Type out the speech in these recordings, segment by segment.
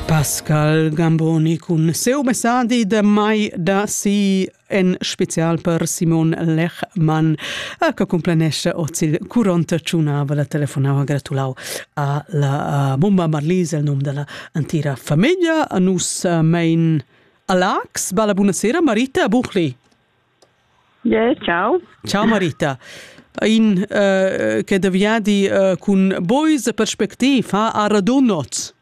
Pascal Gamboni cun seu messadi de mai da si en special per Simon Lechmann che complanesce ozil curont ciunava la telefonava gratulau a la bomba Marlise el nom della antira famiglia nus mein Alax balla buonasera Marita Buchli Yeah, ciao. Ciao Marita. In uh, che de viadi uh, cun boys perspectiv ha a radunot.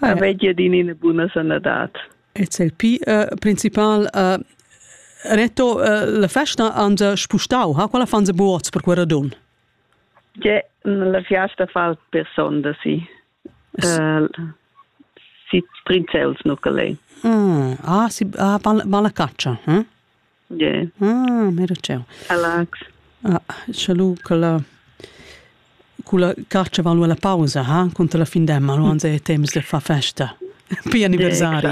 Avegia din ina buna sanadad. It's il pi uh, principal uh, Reto, uh, la festa han se spustau, ha quella fan se buots per quella dun? Je, la fiasta fa per sonda sì. Uh, si prinzels nucale. Mm. Ah, si ah, van la caccia, hm? Yeah. Ah, mero ciao. Alex. Ah, salut quella quella carce valu alla pausa, ha? Contro la fin d'emma, lo anze è temps de fa festa. Pi anniversari.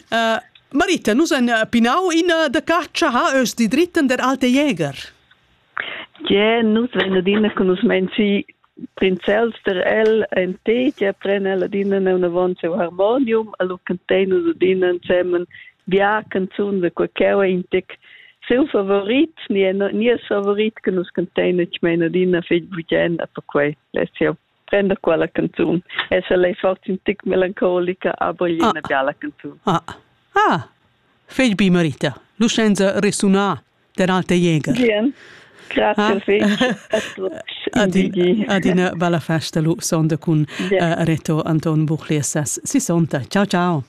uh, Marita, nus en eh, pinau in eh, da carcia ha ös di dritten der alte Jäger. Gie, nus vein adina conoscenzi prinzels der el en te, che pren el adina neunavon seu harmonium, allo cantein nus adina ensemen bia canzun de quaqueua in tec seu favorit, ni è ni è favorit che nus cantein, ich meine adina fetg bugien a perquei, less jau prenda quella canzun e se lei forti un tic melancolica a bogli una biala canzun ah ah fegl bi marita lucenza resuna der alte jäger bien Grazie. Adina bella festa lu sonda cun Reto Anton Buchlias. Si sonda. Ciao ciao.